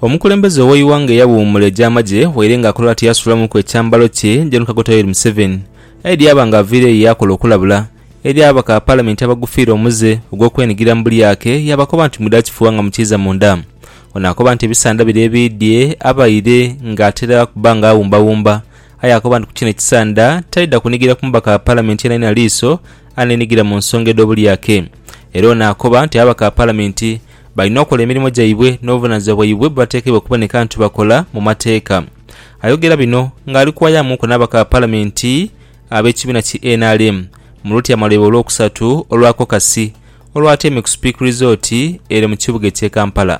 Omukulembeze ow'eighanga eyawuumula egy'amagye waire nga akola ati yaasulamuku ekyambalo kye, Gen Kaguta Yoweri Museveni aidha yaaba nga aviireyo ye yaakola okulabula eri ababaka ba Palamenti abagufiire omuze ogw'okwenhigira mu bulyake yaabakoba nti mwidha kifuuwa nga mukiiza munda. Ono akoba nti ebisaandha biri ebiidhye abaire nga atera okuba nga awumbawumba aye akoba nti ku kino ekisaandha taidha kunhigira ku mubaka wa Palamenti yenayenha liiso aneenhigira mu nsonga edh'obulyake era ono akoba nti ababaka ba Palamenti balina okola emirimu gyaibwe n'obuvunaanyizibwa bwaibwe bwebatekeibwa okuboneka nti bakola mu mateeka. Ayogera bino ng'ali kuwayamuuku n'ababaka ba Palamenti ab'ekibiina ki nrm mu lutyaama lwaibwe olwokusatu olwa kokasi olwatyaime ku sipiikirizooti ere mu kibuga eky'e Kampala.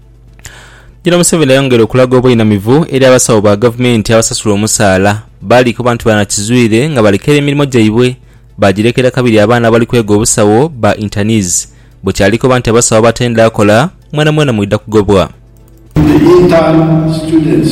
Jino Museveni ayongera okulaga obweinamivu eri abasawo ba gavumenti abasasula omusaala bali kuba nti banakizwire nga balekera emirimo gyaibwe bagirekera kabiri abaana abali kwega obusawo ba internees bwekyali kuba nti abasawo abatendha kola mwenamwena mwidha kugobwa. The intern students.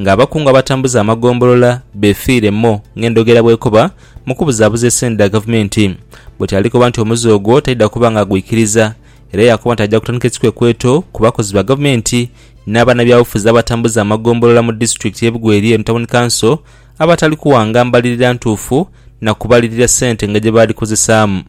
nga abakungu abatambuza amagombolola befiire mo ng'endhogera bwekoba mu kubuzaabuza esente dha gavumenti. Bwete alikoba nti omuze ogwo taidha kuba nga agwikiriza era yakoba nti aja kutandika ekikwekweto ku bakozi ba gavumenti n'abanabyabufuzi abatambuza amagombolola mu disitulikiti y'e Bugweri eno Tawuni Kanso abatali kuwanga mbalirira ntuufu na kubalirira sente nga gyebaadhikozesaamu.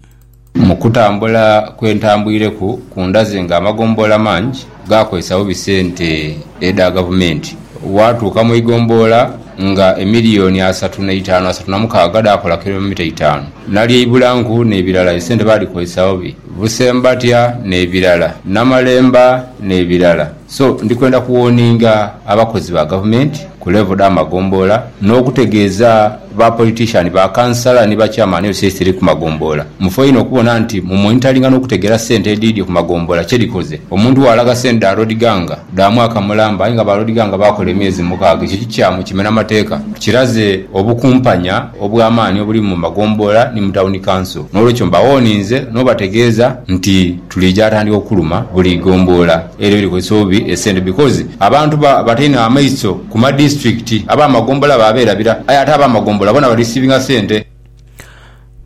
Mu kutambula kwe ntambwireku ku ndaze nga amagombolola mangi gaakozesa bubi sente edha Gavumenti. Waatuuka mu igombolola nga emiliyoni asatu na itaanu asatu na mukaaga dhaakola kilomita itaanu. Nali e Ibulanku n'ebirala esente baadhikozesa bubi, Busembatya n'ebirala, Namalemba n'ebirala. So ndi kwenda kuwoninga abakozi ba gavumenti ku levo dha magomboola n'okutegeeza ba politician, ba kansala ni ba chairman of state dhiri ku magomboola. Mufe inho okubona nti mu monitoringa n'okutegeera sente edhiidyo ku magomboola kye dhikoze. Omuntu bw'alaga sente dha Lord Ganga dha mwaka mulamba aye nga ba Lord Ganga baakola emyezi mukaaga ekyo kikyamu, kimena mateeka, kiraze obukumpanya obw'amaani obuli mu magomboola ni mu Town Council. N'olwekyo mbawoninze n'obategeeza nti. Tuliija atandika okuluma buli gomboola ere erikozesa obubi esente because abantu ba bata inho amaiso ku ma district aba magombola ba berabira aye ate aba magombola bona ba receivinga sente.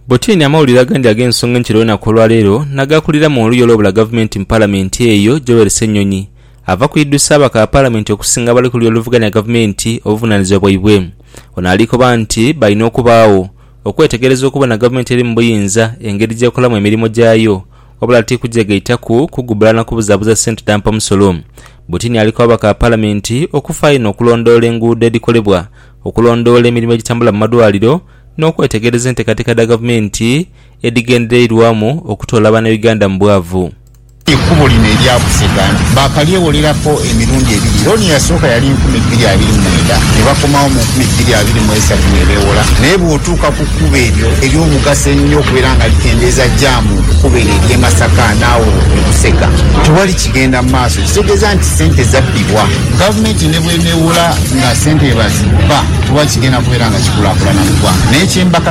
Butini amawulire agandi ag'ensonga enkiro y'olunaku olwaleero nagaakulira mu oluyi olw'obula gavumenti mu palamenti eyo Joel Ssenyonyi ava kwidhusa ababaka ba palamenti okusinga abali ku luyi oluvuganya gavumenti obuvunanizibwa bwaibwe. Ono alikoba nti balina okubaagho okwetegereza okubona gavumenti eri mu buyinza engeri gy'ekolamu emirimo gyayo wabula ti kugyegaitaku kugubbala na kubuzaabuza ssente dha mpamusolo. Butini ali ku babaka ba Palamenti okufaayo eno okulondoola enguudo edhikolebwa, okulondoola emirimo egitambula mu malwaliro n'okwetegereza enteekateeka dha gavumenti edhigendereirwamu okutoola Bannayuganda mu bwavu. Ekubo lino erya Busega baakalyewoleraku emirundi ebiri. Looni eyasooka yali nkumi bbiri abiri mu mwenda, ne bakomawo mu nkumi bbiri abiri mu eisatu nebeewola. Naye bw'otuuka ku kkubo eryo ery'omugaso ennyo okubeera nga likendeeza jaamu ku kkubo eryo ery'e Masaka n'agho e Busega, tewali kigenda mu maaso. Kitegeeza nti ssente zabbibwa. Gavumenti ne bw'eneewola nga ssente bwe bazibba, tewali kigenda kubeera nga kikulaakulana mu ggwanga. Naye kye mbaka.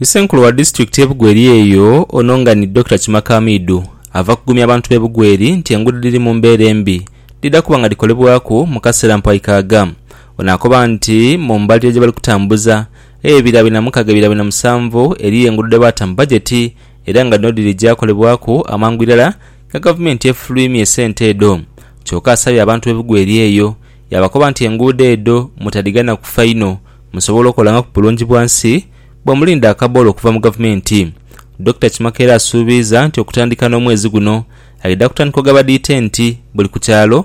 Isenkulu wa disitulikiti ye Bugweri eyo ono nga ni Dokita Kimaka Hamidu ava kugumya abantu be Bugweri nti enguudo dhiri mu mbeera embi dhidha kuba nga dhikolebwaku mu kaseera mpoayi kaaga. Ono akoba nti mu mbalirira gyebali kutambuza eyo ebira bina mukaga ebira bina musanvu eriyo enguudo dhebaata mu bajeti era nga dhino dhirija kolebwaku amangu irala nga gavumenti efulwimya esente edho kyoka asabye abantu be Bugweri eyo Yaabakoba nti, Enguudo edho mutadhigana kufa inho, musobole okolangaaku bulungi bwa nsi bwe mulinda akaboolo okuva mu Gavumenti. Dokita Kimaka era asuubiiza nti okutandika n'omwezi guno, aidha kutandika ogabadha itenti buli ku kyalo,